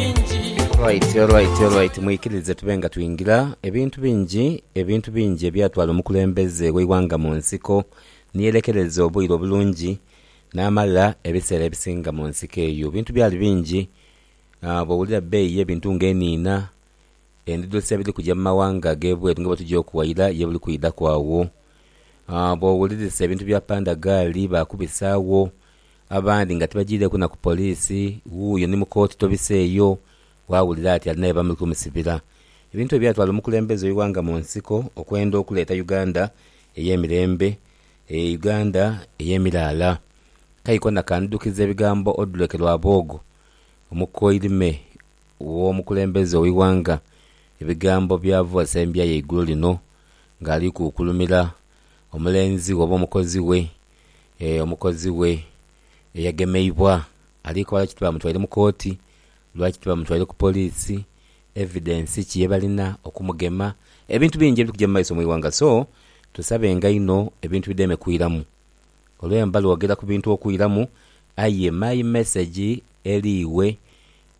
Alright, alright, alright. Mwikirize tube nga twingira ebintu bingi ebintu bingi ebyatwala omukulembeze w'eighanga mu nsiko niyerekereza obwire obulungi n'amala ebiseera ebisinga mu nsiko eyo. Ebintu byali bingi ah, bw'owulira ebbeeyi y'ebintu nga eniina, endhidho se biri kuja mu mawanga ag'ebweru nga bwe tugya okuwaira ye biri kwidhaku agho. Ah, bw'owulirisa ebintu bya pandagaali baakubisaagho, Abandi nga tibajiireeku na ku poliisi, wuuyo ni mu kooti tobiseeyo, waawulira ati alinayo abamuli kumusibira. Ebintu ebyatwala omukulembeze w'eighanga mu nsiko okwenda okuleeta Uganda ey'emirembe, e Uganda ey'emiraala. Kai kona kandhukiza ebigambo Oduleke Rwabwogo, omukoirime w'omukulembeze ow'eighanga, ebigambo by'avoolesa embya ye eigulo lino ng'ali kuukulumira omulenzi we oba omukozi we omukozi we eyagemeibwa ali koba lwaki tibamutwaire mu kooti, lwaki tibamutwaire ku poliisi, evidence ki yebalina okumugema. Ebintu bingi ebiri kuja mu maiso mu ighanga so tusabenga inho ebintu bideme kwiramu. Olwe mba lwogera ku bintu okwiramu aye my message eri iwe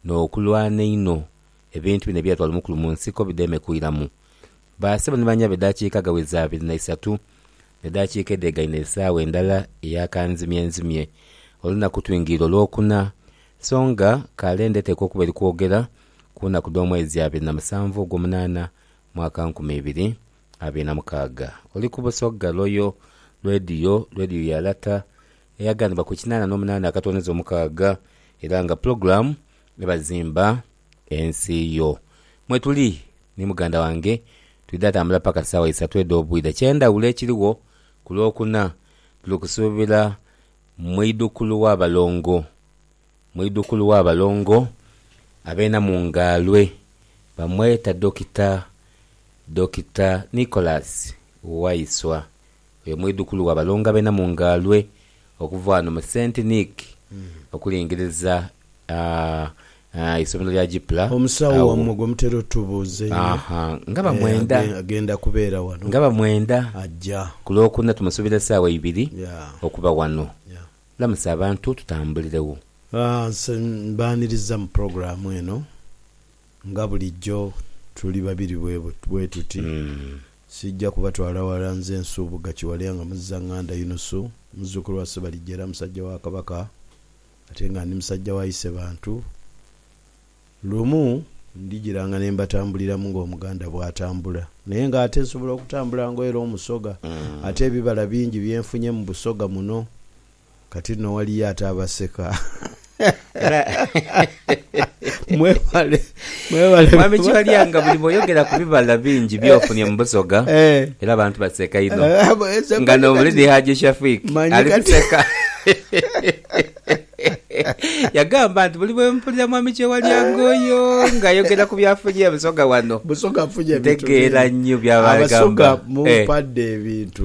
no kulwana einho ebintu bino ebyatwala omukulu mu nsiko bideme kwiramu. Ba sebo ni banyabe edakika ghaweza abiri na isatu. Edaakiika edhegaine esaawa endala eya kanzimyenzimye, olunaku twingirire Olwokuna, so nga kale ndeteekwa okuba eri kwogera ku naku dh'omwezi abiri na musanvu ogw'omunaana mwaka nkumi ibiri abiri na mukaaga. Oli ku Busoga Royal Radio, Radio ya Lata eyaganibwa ku kinaana n'omunaana akatonoza omukaaga era nga pulogulaamu eba Zimba Ensi yo. Mwetuli ni muganda wange twidha tambula paka saawa isatu edh'obwidha. Kyendhawulo ekirigho ku Lwokuna tuli kusuubira mwidhukulu wa balongo mwidhukulu wa balongo ab'enamu ng'alwe bamweta Dokita Dokita Nicholas Waiswa Oyo mwidhukulu wa Balonga b'e Namungaalwe okuva ghano mu Saint Nic okulingiriza eisomero lya Gipla. Omusawo wammwe gwe mutera otubuuza einho agendakubeera wano? Nga bamwenda. Ajja. Ku Lwokuna tumusuubira saawa ibiri okuba wano. Lamusa abantu tutambuliregho. Nse mbaaniriza mu pulogulaamu eno. Nga bulijjo tuli babiri bwetuti. Siija kubatwala ghala nze nsuubugha kiwale nga muzizanganda Yunusu muzzukulu wa Sebalijja era musajja wa Kabaka ate nga ndi musajja wa Isebantu. Lumu ndijiranga ne mbatambuliramu ng'Omuganda bw'atambula naye nga ate nsobola okutambula ng'oyera Omusoga ate ebibala bingi bye nfunye mu Busoga muno. Kati no waliyo ate abaseka. Mwebale mwebale. Mwami Kiwalya nga buli bwoyogera ku bibala bingi byofunye mu Busoga eh. era abantu baseka inho eh, nga n'omulidi Haji Shafik ali kuseka yagamba nti buli bwempulira mwami Kyewalyanga oyo ng'ayogera ku byafunye Busoga wano ntegeera nnyo byaba agamba. Abasoga mumpadde eh. ebintu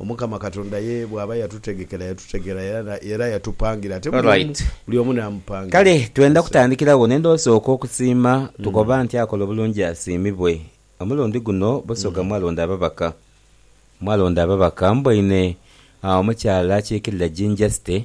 Omukama Katonda ye bw'aba yatutegekera, yatutegera era yatupangira. Ate buli omu n'amupangira. Kale twenda kutandikira wo n'endhowo sooka okusiima tukoba nti akola obulungi asiimibwe. Omulundi guno Busoga mwalonda ababaka. Mwalonda ababaka mboine omukyala akiikirira Jinja City,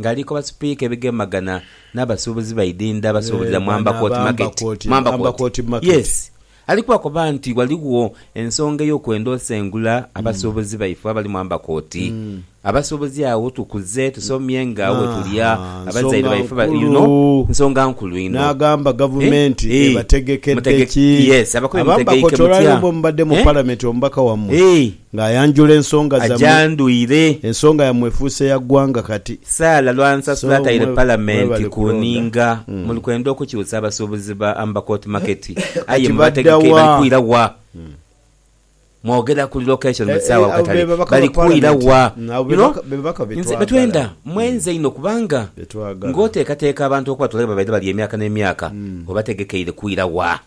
Ngali ku basipiika ebigemagana n'abasuubuzi baidinda basuubulira mu Ambercourt Market, mu Ambercourt, yes, ali kubakoba nti ghaligho ensonga ey'okwenda osengula abasuubuzi baife abali mu Ambercourt. Abasuubuzi agho tukuze, tusomye nga agho wetulya, abazaire baife ba, you know, nsonga nkulu inho. N'agamba Gavumenti ebategekedde ki? Yes, abakulu mutegeike mutya? Abambercourt olwaleero bwemubadde mu Palamenti omubaka wammwe Ng'ayanjula ensonga zammwe. Ajandwire. Ensonga yammwe efuuse ya ggwanga kati. Saala Lwansasula ataire Palamenti ku nninga. Muli kwenda okukyusa abasuubuzi ba Amber Court Market aye mubategeke bali kwira wa? Mwogera ku relocation buli saawa akatale. Bali kwira wa? You know, nze betwenda mmwenze inho kubanga ng'oteekateeka abantu okubatwala ghe babaire bali emyaka n'emyaka obategekeire kwira wa?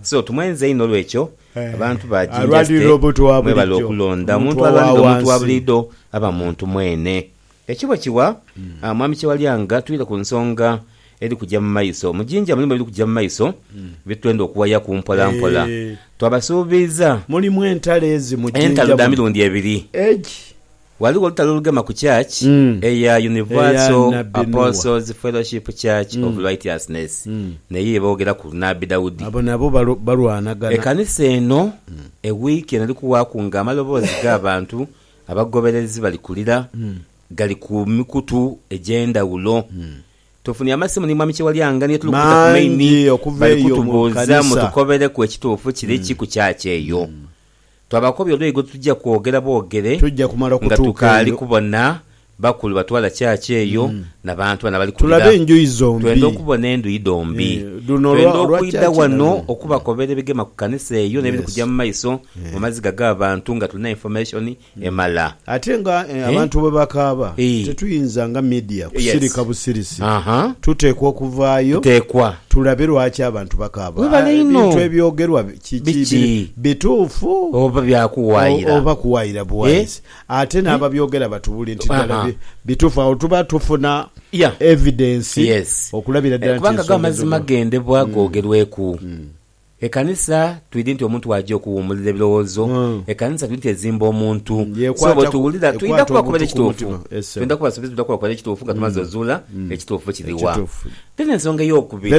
So, tumwenze inho olw'ekyo abantu ba jinja ze mwebale okulonda omuntu alwanira omuntu wa buliidho aba muntu mwene. Ekyo bwe kiwa, Mwami Kyewalya, nga twidha ku nsonga eri kuja mu maiso. Mu jinja mulimu ebiri kuja mu maiso bye twenda okuwayaku mpola mpola. Twabasuubiiza entalo dha mirundi ebiri. Ghaligho olutalo olugema ku church eya Universal Apostles Fellowship Church of Righteousness, neyo ye boogeraku Nabbi Daudi. Ekanisa eno e wiiki eno eri kuwaaku nga amaloboozi g'abantu abagoberezi bali kulira gali ku mikutu egy'endhawulo. Tufunye amasimu ni Mwami Kyewalyanga ni ye tuli kubita ku maini bali kutubuuza mutukobereku ekituufu kiri ki ku church eyo. Twabakobya oluyi gwe tuja kwogera bwogere Tuja kumala nga okutuuka tukaali eyo. kubona bakulu batwala church eyo na bantu bano abali kulira. Tulabe enjuyi Twenda zombi. okubona enduyi dhombi. Eh, dhuno olwa- Twenda olwa okwidha church ghano nalwo. okubakobera ebigema ku kanisa eyo n'ebiri Yes. kuja mu maiso mu Yes. maziga g'abantu nga tulina information emala. Ate nga abantu bwe bakaaba, tetuyinza nga midia kusirika busirisi. Tuteekwa okuvaayo tulabe lwaki abantu bakaaba. Ebintu ebyogerwa kiki? Bituufu oba kuwaayira buwaayisi? Ate n'ababyogera batubule nti ddala bituufu. Agho tuba tufuna evidensi okulabira ddala nti ensonga ezo. Kubanga go amazima gendebwa googerweku. Ekanisa twidhi nti omuntu bw'aja okuwuumulira ebirowoozo, ekanisa twidhi nti ezimba omuntu. So bwetuwulira twidha kuba kubaire kituufu. Twidha kuba suubiza twidha kuba kubaire kituufu nga tumaze ozuula ekituufu kiri wa. Then ensonga ey'okubiri,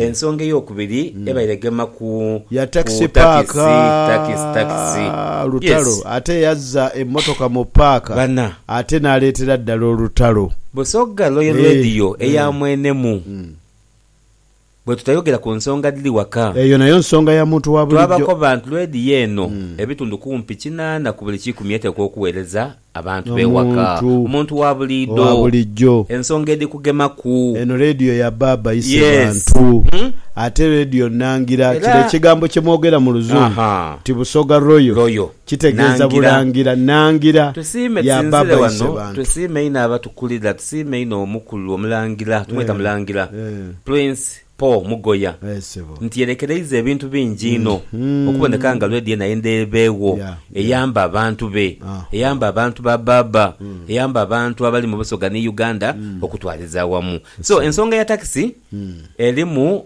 ensonga ey'okubiri ebaire egema ku ku takisi, takisi, takisi. Yes. Bana. Busoga Royal Radio eya mwenemu. bwe tutayogera ku nsonga dhiri waka. Eyo nayo nsonga ya muntu wa bulijo. Twabako bantu leediyo eno, ebitundu kumpi kinaana ku buli kikumi eteekwa okuweereza abantu b'ewaka. Omuntu wa bulijo. Ensonga edhikugemaku. Eno leediyo ya baaba ise bantu. Ate leediyo nnangira kiro ekigambo kye mwogera mu Luzungu nti Busoga Royal Kitegeeza bulangira Nangila ya baba ise bantu. Tusiime inho abatukulira, tusiime inho omukulu omulangira, tumweta mulangira, Prince Paul Mugoya nti yerekereiza ebintu bingi inho okuboneka nga lwedi yena endheebegho eyamba abantu be, eyamba abantu ba baba, eyamba abantu abali mu Busoga ni Uganda okutwaliza awamu. So ensonga ya takisi erimu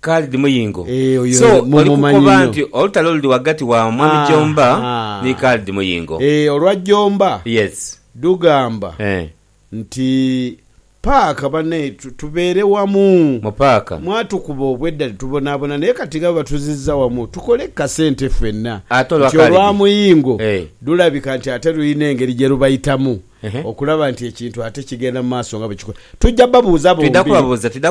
Khalid Muyingo, so oli kukoba nti olutalo luli ghagati wa Mwami Jomba ni Khalid Muyingo? Olwa Jomba dhugamba nti paaka bane tubeere wamu mwatukuba obwedda ni tubonaabona naye kati nga bwe batuzizza wamu tukole ku kasente fenna nti olwa Muyingo lulabika nti ate lulina engeri gye lubayitamu. okulaba nti ekintu ate kigenda mu maaso nga bwe kiko. Twidha babuuza bombi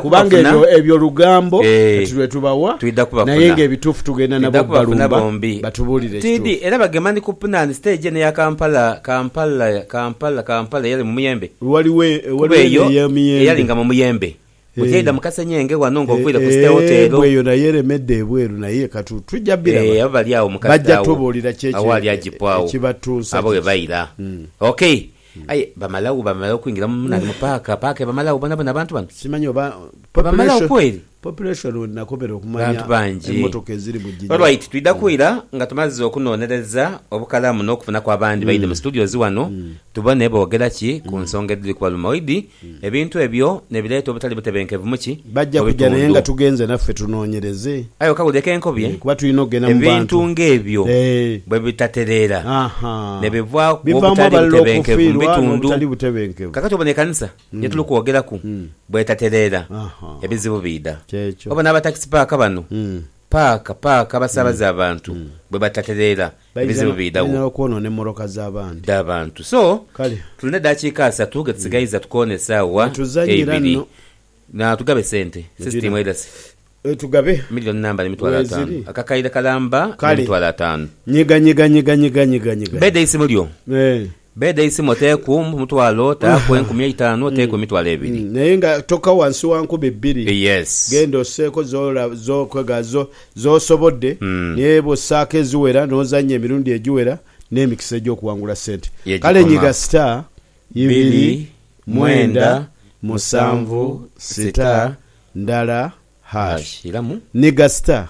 kubanga ebyo ebyo lugambo kati lwe tubawa naye ng'ebituufu tugenda nabo bbalumba batubuulire ekituufu. Era bagema ni ku Punan stage eno eya Kampala, Kampala, Kampala, Kampala eyali mu muyembe kuba eyo eyalinga mu muyembe. Butyeidha mu kasenyenge ghano nga oviire ku State Hotel. Eeh bweyo nayo eremedde ebweru naye katu tujja biraba. Eeh abali agho mu kati agho agho ali ajipo agho abo webaira ok aye bamalagho bamala okwingira mu nani mu park park ebamalagho bonabona abantu bano? Simanyi oba ebamalagho kweri? Bantu bangi alright twidha kwira nga tumaze okunonereza obukalamu nokufunaku abandi baidhe mu studios ghano tubone bogera ki ku nsonga edhiri kubaluma oidhi Ebintu ebyo nebireeta obutali butebenkevu mu ki? Bajja kuja naye nga tugenze naffe tunoonyereze. Aye okawulire k'enkobye? Kuba tulina okugenda mu bantu. Ebintu ng'ebyo bwe bitatereera, ne bivaaku obutali butebenkevu mu bitundu. Kakati obona ekanisa ye tuli kwogeraku bw'etatereera, ebizibu biidha. Obona aba takisi paaka bano, paaka paaka abasaabaza abantu, bwe batatereera, ebizibu biidhagho dh'abantu. So, tulina edaakiika asatu ghe tusigaiza tukoone esaawa eibiri. Na tugabe sente, system erase. Million namba n'emitwalo ataanu. Akakaire kalamba n'emitwalo ataanu. Bbeeda eisimu lyo. Beeda isima oteeku omutwalo, taaku enkumi eitanu, oteeku emitwalo ebiri. Naye nga toka wansi wa nkumi bbiri. Yes. Genda osseeko z'okola z'osobodde, naye bw'ossaako eziwera n'ozannya emirundi egiwera, n'emikisa egy'okuwangula ssente kale nyiga star ibiri mwenda musanvu sita ndala hash. Nyiga star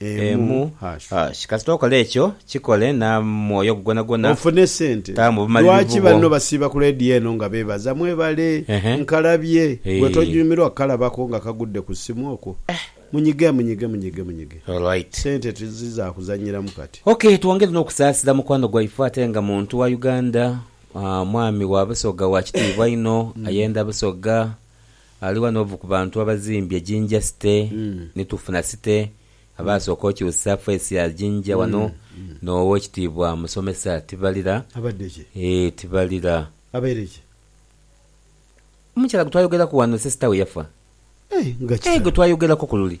emu. Hash. Kasita okola ekyo, kikole n'amwoyo gwo gwonagwona. Ofune sente. Taamu obumalirivu Lwaki bwo. banno basiiba ku leediyo eno nga beebaza, Mwebale, Ehe. nkalabye. Gwe Eeh. tonyumirwa kukalabako nga kagudde ku ssimu okwo? Eh. Munyige, munyige, munyige, munyige. Alright. Sente tizi za kuzannyiramu kati. Ok, twongere n'okusaasira mukwano gwaife ate nga muntu wa Uganda, mwami wa Busoga wa kitiibwa inho, ayenda Busoga, Ali wano ovu ku bantu abazimbye Jinja City ni tufuna City abaasooka okyusa face ya Jinja wano n'Owekitiibwa Musomesa Tibalira. Abadde ki? Eeh Tibalira. Abaire ki? Omukyala gwe twayogeraku wano sisita we yafa. Eeh nga Eeh gwe kitalo. twayogeraku ku luli.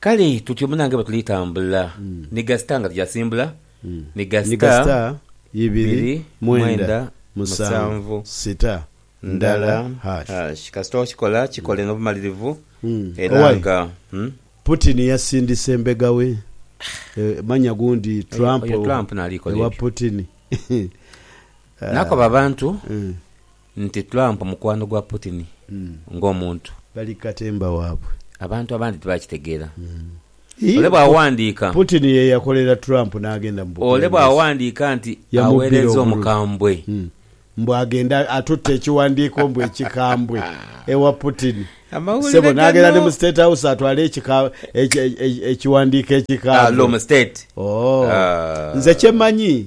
Kale tutyo munange bwe tuli tambula ni gasita nga tujasimbula ni Ni gasita gasita ibiri ibiri mwenda mwenda musanvu musanvu sita ndala ndala hash. hash. Kasita okikola kikole n'obumalirivu Mm. era Owai. nga mm, Putin yasindise mbega we eh, manya gundi Trump, oyo Trump nalikola ewa ebyo. Putin. Nakoba abantu Mm. Nti Trump mukwano gwa Putin ng'omuntu. Bali ku katemba waabwe. Abantu abandi tibakitegeera. Ole bw'aghandiika. Putin ye yakolera Trump n'agenda mu bukulembeze. Ole bw'aghandiika nti aweerezza omukambwe. Mbu agenda atutte ekiwandiiko mbu ekikambwe ewa Putin. Ssebo n'agenda ni mu State House atwale ekiwandiiko ekikambwe. Allo mu State. Ooh. Nze kye mmanyi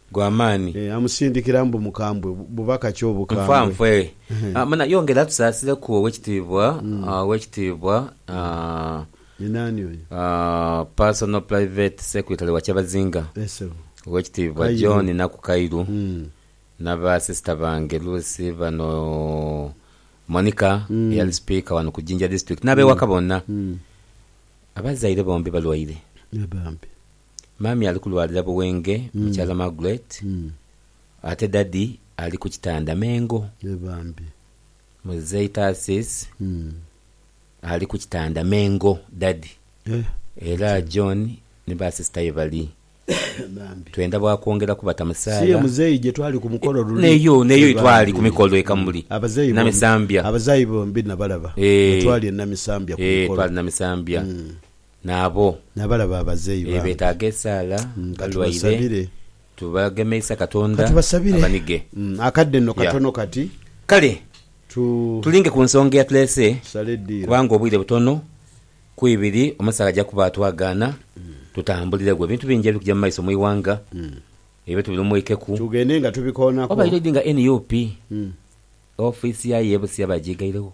gwa maani. Amusindikira mbu mukambwe, bubaka ki obukambwe? Nfanfe. Muna, yongera tusaasireku Owekitiibwa, Owekitiibwa, Ni naani oyo? Personal Private Secretary wa Kyabazinga, Yes, Ssebo. Owekitiibwa Kairu. John Nakukairu, Mm. naba sister bange Lucy bano, Monica eyali Speaker wano ku Jinja District, n'abewaka bonna. Abazaire bombi balwaire. Ye bambi. Mummy ali kulwalira Buwenge, Mukyala Margaret, ate Daddy ali ku kitanda Mengo. Yee bambi. Muzei Tarsis ali ku kitanda Mengo, Daddy, era John ni ba sister ye bali. Bambi. Twenda bwa kwongera kubata musaala. Si ye muzei gye twali ku mukolo luli? Neyo, neyo ye twali ku mikolo e Kamuli, Abazei bombi, Namisambya. Abazei bombi nabalaba. Eeh. Bwe twali e Namisambya ku mukolo. Eeh, twali Namisambya. n'abo. N'abalaba abazeeyi baamu. Ee, betaaga esaala, balwaire, tubagemeisa Katonda abanige. Akadde nno katono kati. Kale tulinge ku nsonga eyatuleese, kubanga obwire butono, ku ibiri omusaale aja kuba atwagaana tutambuliregho. Ebintu bingi ebikuja mu maiso mu ighanga, ebyo tubilumweikeku. Tugende nga tubikoonako. Obaire odi nga nup, ofiisi yayo ey'e Busia bagiigairegho?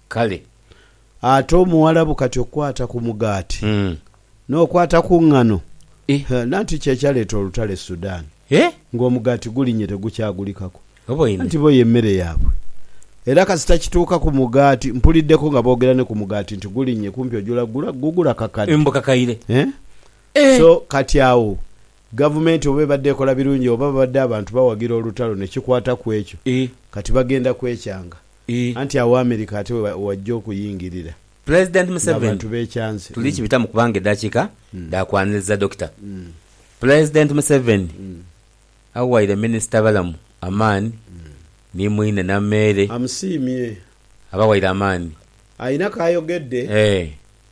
Kale ate Omuwarabu kati okukwata ku mugaati n'okwata ku ngano, hee nanti ky'ekyaleeta olutalo e Sudan nga omugaati gulinnye tegukyagulikaku anti bo y'emmere yaabwe era kasita kituuka ku mugaati, mpuliddeko nga boogera ne ku mugaati nti gulinnye kumpi ojula gugula kakade eeh so kati awo Gavumenti oba ebadde ekola birungi oba babadde abantu bawagira olutalo ne kikwata ku ekyo kati bagenda kwekyanga. I. Anti agho America ate we wajja okuyingirira. Pulezidenti Museveni Ng'abantu beekyanze. Tuli kibitamu kubanga edhakiika dha kwaniriza Dokita. Pulezidenti Museveni awaire Minisita Balamu amaani ni mwine Nameere. Amusiimye. Abawaire amaani. Alina k'ayogedde. E.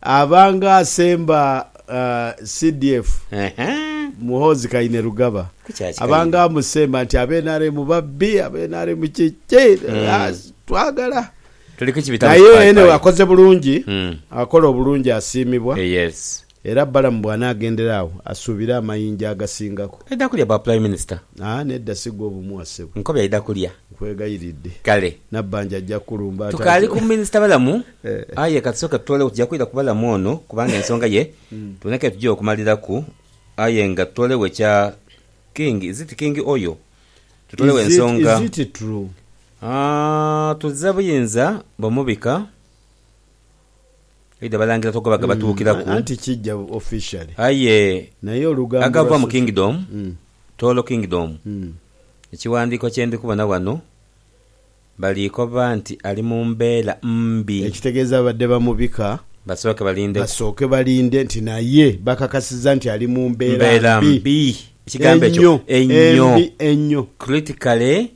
Abanga asemba CDF Muhoozi Kainerugaba abanga amusemba nti abe nrm babbi, abe nrm kiki, twagala naye anyway akoze bulungi, akola obulungi asiimibwa era Balamu bw'anaagendera agho asuubire amayinja agasingaku. Aidha kulya bwa Prime Minister? Aa nedda si gwe obumuwa ssebo. Nkobe aidha kulya? Nkwegayiridde. Kale. Nabbanja ajja kukulumba ate. Tukaali ku Minisita Balamu. Aye ka tusooke tutoolegho, tuja kwidha ku balamu ono kubanga ensonga ye twena ke tugya okumaliraku. Aye nga tutoolegho ekya King, is it King Oyo? Tutoolegho ensonga. Is it true? Haa, tuza buyinza bumubika eidha Abalangira togoba gabatuukiraku. Anti kija officially. Aye agava mu Kingdom, Tooro Kingdom, ekiwandiiko kye ndi kubona wano. Baliikoba nti ali mu mbeera mbi. Ekitegeeza babadde bamubika. Basooke balindeku. Basooke balinde nti naye bakakasiza nti ali mu mbeera mbi. Mbeera mbi. Ekigambo ekyo enyo. Embi enyo. Critically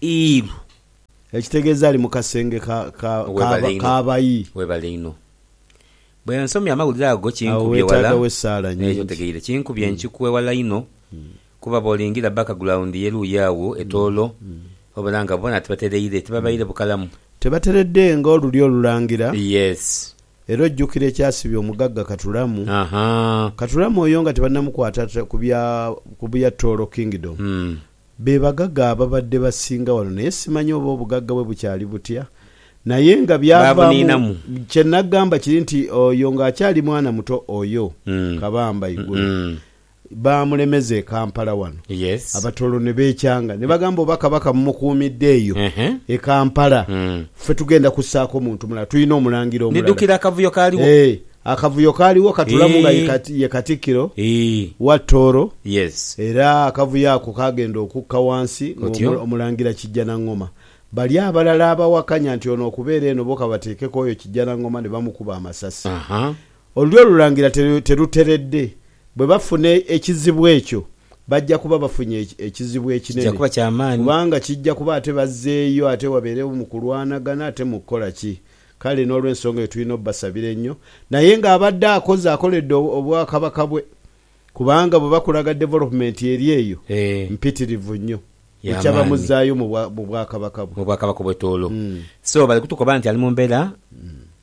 ill. Ekitegeeza ali mu kasenge ka, ka, k'abayi. Webale inho. Bwe nsomye amawulire ago kinkubye wala. Awo weetaagawo essaala nnyingi. Ekyo otegeire. Kinkubye nkikwe wala inho. Kuba bw'olingira bakagulawundi ye luuyi agho e Tooro, obona nga boona tibatereire, tibabaire bukalamu. Tibateredde nga olulyo olulangira. Yes. Era ojjukira ekyasibya omugagga Katulamu. Ahaa. Katulamu oyo nga tibanamukwata ku bya ku bya Tooro Kingdom. Be bagaga ababadde basinga wano naye simanyi oba obugagga bwe bukyali butya. Naye nga byavaamu, kye nnagamba kiri nti oyo ng'akyali mwana muto oyo, Kabamba igulu. baamulemeza e Kampala wano, Yes. Abatoro ne beekyanga ne bagamba oba Kabaka mumukuumidde eyo Ehe. e Kampala, Mm. ffe tugenda kussaako muntu mulala, tulina Omulangira omulala. Ndidukira akavuyo kaaliwo. Eeh, akavuyo kaaliwo Katulamu nga ye Eeh. Kati- ye Katikkiro Eeh. wa Tooro Yes. era akavuyo ako kaagenda okukka wansi Otyo. ng'omu- Omulangira Kijjanangoma. Bali abalala abawakanya nti ono okubeera eno bo kabateekeko oyo Kijjanangoma ne bamukuba amasasi. Aha. Olulyo olulangira teruteredde. Bwe bafuna ekizibu ekyo, bajja kuba bafunye ekizibu ekinene, kubanga kijja kuba ate bazzeeyo ate wabeerewo mu kulwanagana ate mu kukola ki. Kale n'olw'ensonga eyo tulina obasabira ennyo, naye ng'abadde akoze akoledde Obwakabaka bwe, kubanga bwe bakulaga development eri eyo, mpitirivu nnyo. Bucha bamuzzaayo mu Bwakabaka bwe. Mu Bwakabaka obw'etoolo. So bali kutukoba nti ali mu mbeera.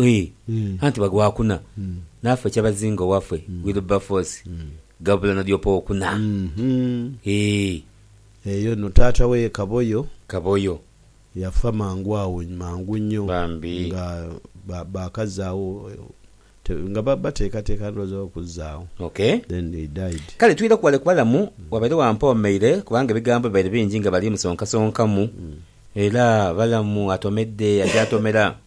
Ii, Anti bagwa kuna, naafe kyabazinga owafe Wilberforce gabula na dyopa okuna. Ii. Eyo no taata we Kaboyo. Kaboyo. Yafa mangu agho mangu nyo. Bambi. Nga bakazaawo nga bateekateeka ndhooza okuzaagho. Okay. Then he died. Kale twidha ku wale ku balamu, wabaire wampoomeire kubanga ebigambo bibaire bingi nga bali musonkasonkamu. Era balamu atomedde, akyaatomera.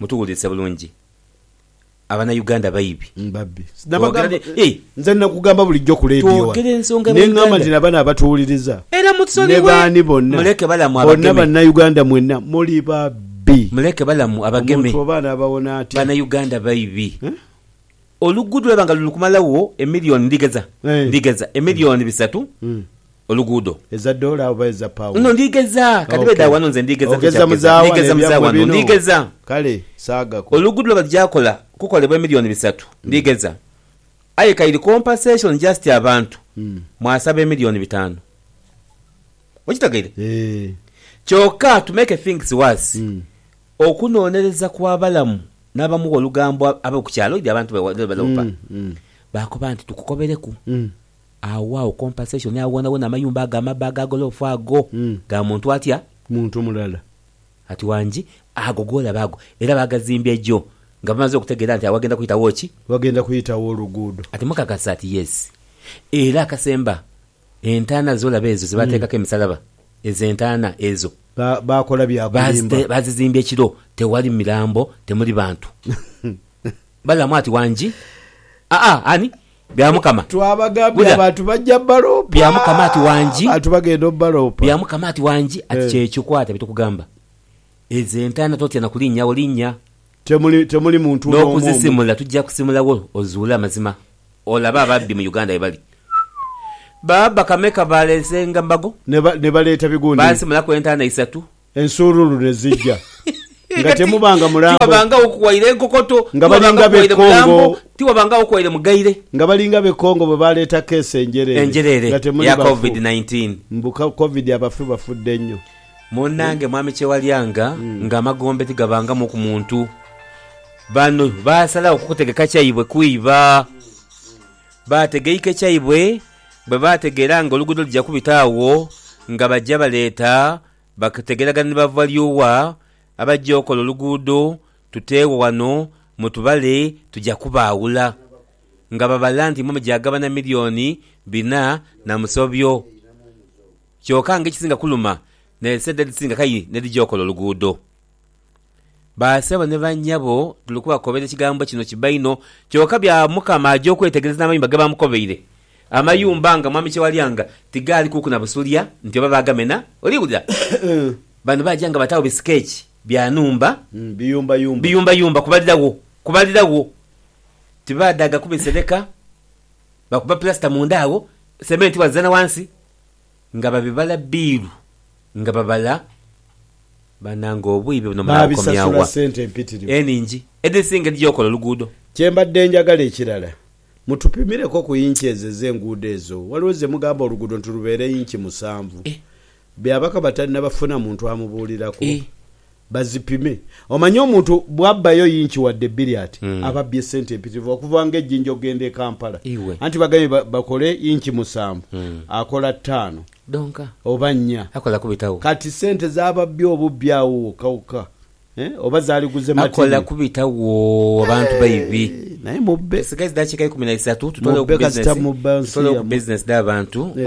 Mutuwulilise bulungi abana Uganda baibi. Babbi. Nabagamba nze nakugamba bulijjo ku leediyo wano ne ngamba nti na bano abatuwuliriza ne baani bonna bonna Bannayuganda mwenna muli babbi. Muleke balamu abageme. Omuntu oba anaabawona atya? Bannayuganda baibi. Oluguudo lwaiba nga luli kumalagho emilioni ndigheza ndigheza emilioni bisatu oluguudo. Eza doola oba eza pauni? No, ndigheza. Ka dhibe dha wano nze ndigheza ku kya kugeza. Ndigheza mu za wano. Ndigheza. Kale, saagaku. Oluguudo lwe bagya kola kukolebwa emilioni bisatu ndigheza, aye ka iri compensation just abantu mwasaba emilioni bitaanu. Okitegeire? Kyoka to make things worse, Okunoonereza kw'abalamu n'abamu olugambo ab'oku kyalo ebyo abantu bye baloopa baakoba nti, Tukukobereku agho agho compensation agho wonawona amayumba ago amabbe aga golofa ago ga muntu atya? Muntu mulala. Ati, Wangi ago g'olaba ago era baagazimbye gyo nga bamaze okutegeera nti agho waghenda kuitagho ki? Waghenda kuitagho oluguudo. Ati, Mukakasa? Ati, Yes. Era akasemba Entaana zo laba ezo ze baateekaku emisalaba, ezo entaana ezo. Baakola bya kulimba. Baazizimbya ekiro, tewali mirambo, temuli bantu balamu. Ati wangi, Aa, ani? Bya Mukama. Twabagambye abantu bajja baloopa. Bya Mukama. Ati wangi. Abantu bagenda obaloopa. Bya Mukama. Ati wangi. Ati kyekyo, kwata bye tukugamba. Ezo entaana totya na kulinnyawo, linnya. Temuli temuli muntu n'omu omu. N'okuzisimula tujja kusimula wo ozuule amazima. Olabe ababbi mu Uganda bwe bali. Baabba kameka baaleesenga mbago. Ne ba ne baleeta bigundi. Baasimulaku entaana isatu. Ensuululu ne zija. Nga Kati temubanga mulambo. tiwabanga aw'okuwaira enkokoto, Nga tiwabanga balinga b'e aw'okuwaira Congo. mulambo, tiwabanga aw'okuwaira mugaire. Nga balinga b'e Congo bwe baaleeta keesi enjereere. Enjereere Nga temuli eya bafu. Covid nineteen. Mbu ka Covid abafu bafudde nnyo. Munnange Mwami Kyewalyanga nga amagombe tigabangamu ku muntu, bano baasalagho kukutegeka kyaibwe kwiba. Baategeike kyaibwe bwe baategeera nga oluguudo luja kubita agho nga baja baleeta bakutegeeragana ni bavalyogha abaja okola oluguudo tuteegho ghano mutubale tuja kubaawula. Nga babala nti imwe muja gabana milioni bina na musobyo. kyoka nga ekisinga kuluma naidhi sente edhisinga kayi n'edhija okola oluguudo. Basebo ni bannyabo tuli kubakobera ekigambo kino kiba inho kyoka bya Mukama aja okwetegereza n'amayumba ge baamukobeire. Amayumba nga Mwami Kyewalyanga tigaalikuuku na busulya nti oba baagamena. Oli wulira? Bano baaja nga bataagho bisikeeki bya nhumba, biyumbayumba kubalira wo, kubalira wo. Tibaadhaaga kubisereka, bakuba pulasita munda agho, sementi bwazizana ghansi, Nga babibala bbiiru nga babala. Banange obwiibe buno munaabukomya wa? Enhingi edhisinga edhija okola oluguudo. Kye mbadde njagala ekirala mutupimireku ku inch ezo ez'enguudo ezo. Waliwo ze mugamba oluguudo nti lubeere inch musanvu. Byabakama talinabafuna muntu amubuuliraku. Bazipime. Omanyi omuntu bwabbayo yinki wadde bbiri ati ababbye sente empitirivu okuva nga ejinja okugenda e Kampala. Anti bagambye bakole yinki musanvu akola ttaano oba nnya. Kati sente zababbye obubbi awo wokka wokka eh oba zaliguze matini. Eeh naye mubbe. Mubbe kasita mubba nsi yamwe. Yes.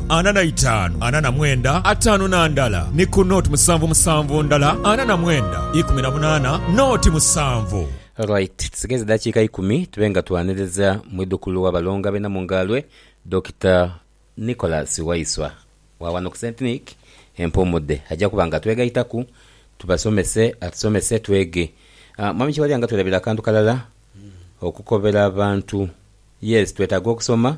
ana na itaanu, ana na mwenda, ataanu na ndala, ni ku nooti musanvu musanvu ndala, ana na mwenda, ikumi na munaana, nooti musanvu. Alright, tusigaiza edhakiika ikumi tube nga twaniriza mwidhukulu wa Balonga be Namungaalwe, Dokita Nicholas Waiswa wa wano ku Saint Nic e Mpuumudde. Aja kuba nga atwegaitaku tubasomese, atusomese twege. Mwami Kiwalya nga twerabira akantu kalala, okukobera abantu. Yes, twetaaga okusoma.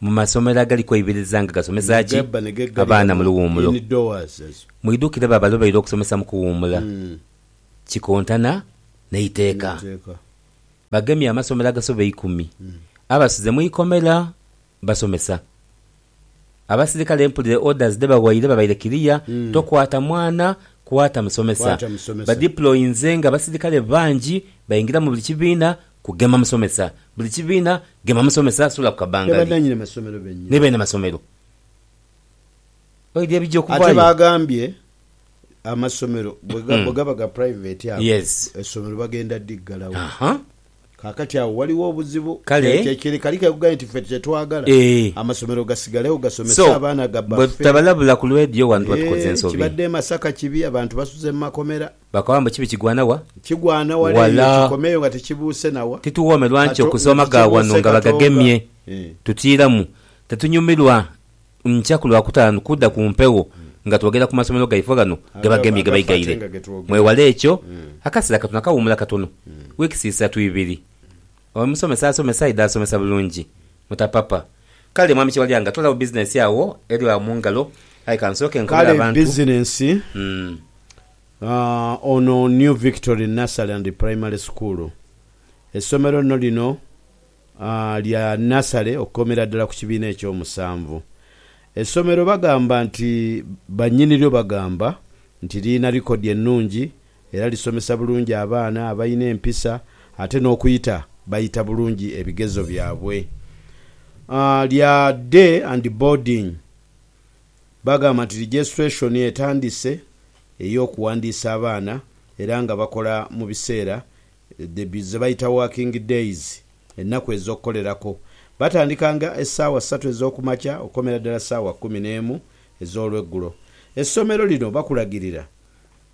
Mu masomero agali kweibiriza nga gasomesa ki abaana mu luwumulo, mwidhukire baba lwe baidha okusomesa mu kuwumula kikontana n'eiteeka. Bagemye amasomero agasoba eikumi abasuze mu ikomera basomesa. Abasirikale mpulire orders dhe bawaire babaire kiriya tokwata mwana kwata musomesa. Badiployinze nga abasirikale bangi baingira mu buli kibiina Kugema musomesa. Buli kibiina gema musomesa sula ku kabangali ni beene masomero baidhi ebigya okuvaayo. Ate baagambye amasomero bwe gaba ga private ago essomero bagenda dhi ggalawo. Kaakati agho ghaligho obuzibu. Kye kali kekugambye nti ffe kye twagala amasomero gasigalegho gasomese abaana gabaffe. Kibadde e Masaka kibi abantu basuze mu makomera. Bakawa mbu kibi kigwana wa? Kigwana wala eyo kikomeyo nga tikibuuse na wa? Tituwoomerwa nti okusooma ga wano nga bagagemye tutiiramu. Tetunyumirwa nkya ku Lwakutaanu kudha ku mpewo nga twogera ku masomero gaifo ghano ge bagemye ge baighaire. Mwewale ekyo. Akaseera katono akawuumula katono, wiikisi isatu ibiri. Omusomesa asomesa aidha asomesa bulungi mutapapa. Kale Mwami Kiwalyanga toolawo bizinensi agho eli agho mu ngalo aye ka nsooke nkobole Kale abantu. bizinensi, aah, ono New Victory Nursery and Primary School. Essomero lino lino, aah, lya nasale okukomera ddala ku kibiina eky'omusanvu. Essomero bagamba nti bannyiniryo bagamba nti lirina likodi ennungi Era lisomesa bulungi abaana abalina empisa ate n'okuyita bayita bulungi ebigezo byabwe. Lya day and boarding. Bagamba nti registration etandise ey'okuwandiisa abaana era nga bakola mu biseera ze bayita working days, ennaku ez'okukolerako. Batandika nga essaawa ssatu ez'okumakya okukomera ddala ssaawa kkumi n'emu ez'olweggulo. Essomero lino bakulagirira.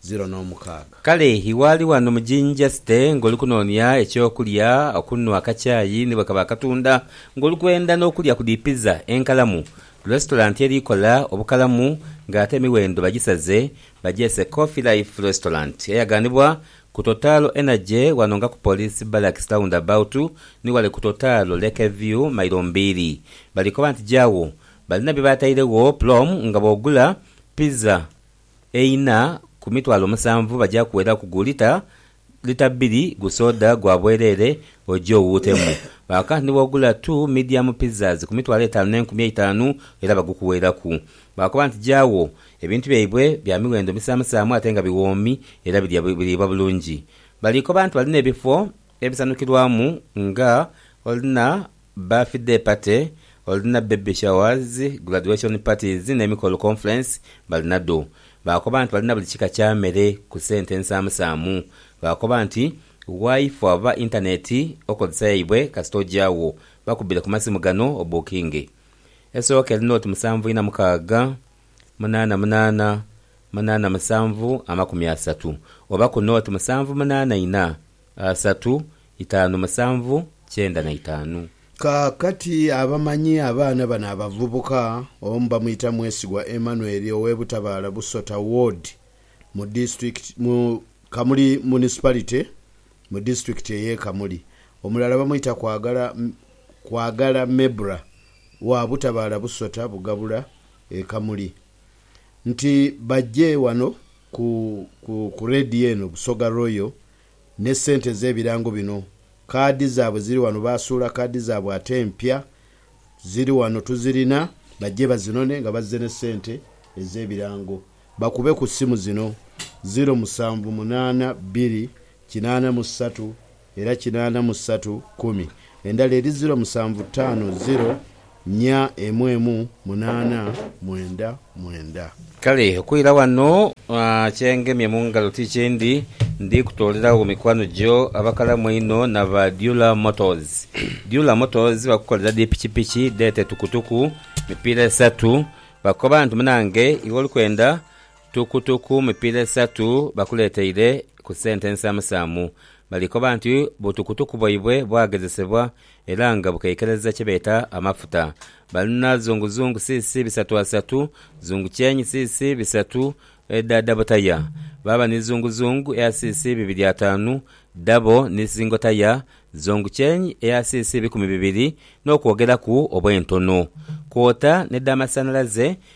ziro n'omukaaga. Kale iwe ali ghano mu yinivasite ng'oli kunoonia eky'okulya, okunhwa akakyayi ni bwe kaba akatunda, ng'oli kwenda n'okulya ku dhi pizza enkalamu, lesitolanti eri kola obukalamu ng'ate emiwendo bagisaze bagyese Coffee Life Restaurant eyaganibwa ku Total Energy wano nga ku Police Barracks Roundabout ni wale ku Total Lake View mailo mbiri. Bali koba nti gyagho balina bye batairegho plom nga bw'ogula pizza Eina ku mitwalo musanvu baja kuweraku gu lita lita bbiri gu soda gwa bwereere oje owuutemu. Kaakano ni bw'ogula tu midiyamu pizzas ku mitwalo etaanu n'enkumi eitaanu era bagukuweraku. Baakoba nti, Jawo, ebintu byaibwe bya miwendo misaamusaamu ate nga biwoomi era biriibwa bulungi. Baliikoba nti balina ebifo Ebisanukirwamu nga olina birthday party, olina baby showers, graduation parties n'emikolo conference balinadho. Baakoba nti balina buli kika kya mere ku sente ensaamusaamu. Baakoba nti Wifi oba internet okozesa yaibwe kasita ogyagho bakubire ku masimu gano obukinge. Esooka eri nooti musanvu ina mukaaga, munaana munaana, munaana musanvu amakumi asatu oba ku nooti musanvu munaana ina Asatu, itaanu, musanvu, kyenda na itaanu. Kaakati abamanyi abaana bano abavubuka, omu bamwita Mwesigwa Emmanuel ow'e Butabaala Busota Ward mu disitulikiti mu Kamuli Municipality mu disitulikiti ey'e Kamuli, omulala bamwita Kwagala Kwagala Mebra wa Butabaala Busota Bugabula e Kamuli nti baje wano Ku, ku, ku leediyo eno, Busoga Royal, ne ssente ez'ebirango bino. Kaadi zaabwe ziri wano, baasuula kaadi zaabwe ate empya. Ziri wano, tuzirina. Bajje bazinone, nga bazze ne ssente ez'ebirango. Bakube ku ssimu zino, ziro musanvu munaana bbiri kinaana mu ssatu, Era kinaana mu satu kumi. Endala eri ziro musanvu taano ziro nya emu emu munaana mwenda mwenda. Kale okwira wano kye ngemye mu ngalo ti kindi, ndi kutoolera wo mikwano gyo abakalamu einho naba Dyula Motors. Dyula Motors bakukolera dhi pikipiki dheete tukutuku, mipiira esatu. Bakoba nti munange iwe oli kwenda Tukutuku mipiira esatu bakuleeteire ku sente ensaamusaamu. Bali koba nti butukutuku bwaibwe bwagezesebwa era nga bukeikereza kye beeta amafuta. Balina zunguzungu cc bisatu asatu, zungukyenyi cc bisatu edha dabo taya, baaba ni zunguzungu eya cc bibiri ataanu dabo ni singo taya, zungukyenyi eya cc bikumi bibiri n'okwogeraku obw'entono, kwota n'edhamasanalaze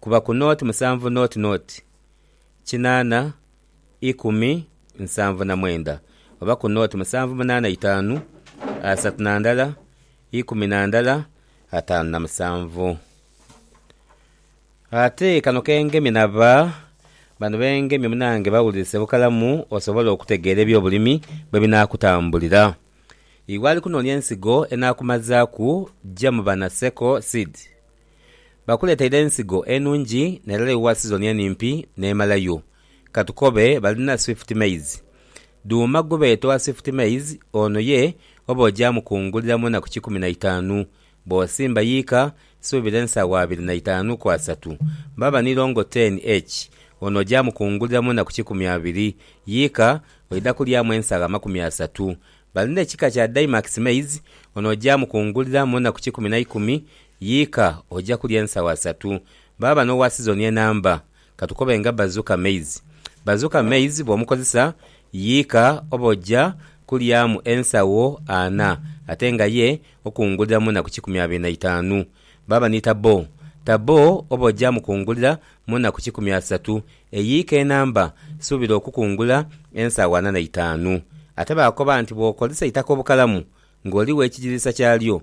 kuba ku noti musanvu noti noti kinaana ikumi nsanvu na mwenda oba ku noti musanvu munaana itaanu asatu na ndala ikumi na ndala ataanu na musanvu. Ate kano ke ngemye na ba bano be ngemye munange bawulilise bukalamu osobole okutegeera eby'obulimi bwe binaakutambulira. Iwe ali kunoonia ensigo enaakumazaaku ja mu bana Seko Seed. Bakuleteire ensigo enungi nerere yo wa sizoni enimpi nemalayo. Katukobe balina swift maize. Duuma gwebeeta owa swift maize ono ye oba ogyamukungulira munaku kikumi na itaanu. Bwosimba yiika suubira ensaawa abiri na itaanu ku asatu. Bwaba ni longo ten H ono ogyamukungulira munaku kikumi abiri. Yiika oidha kulyamu ensagho amakumi asatu. Balina ekika kya Daimax maize ono ogyamukungulira munaku kikumi naikumi Yiika, oja kulya ensawa satu. Baaba n'owa sizoni enamba, katukobe nga Bazooka Maize. Bazooka Maize bw'omukozesa, yiika oba oja kulyamu ensawo ana ate nga ye okunguliramu na ku kikumi abiri na itaanu. Baaba ni Tabo. Tabo oba oja mu kungulira mu na ku kikumi asatu. Eyiika enamba, suubira okukungula ensawo ana na itaanu. Ate baakoba nti bw'okozesa eitaka obukalamu ng'oli w'ekigiriisa kyalyo,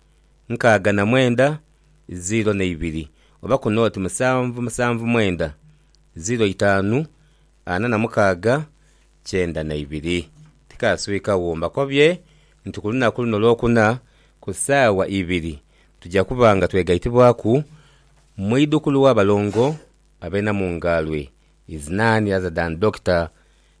nkaaga na mwenda, ziiro n'eibiri, oba ku nooti musanvu musanvu mwenda, ziiro itaanu, ana na mukaaga, kyenda na ibiri. Tikaaswikagho. Mbakobye nti ku lunaku luno Lwokuna ku saawa ibiri tuja kuba nga twegaitibwaku mu idhukulu w'abalongo ab'e Namungaalwe, is none other than Dokita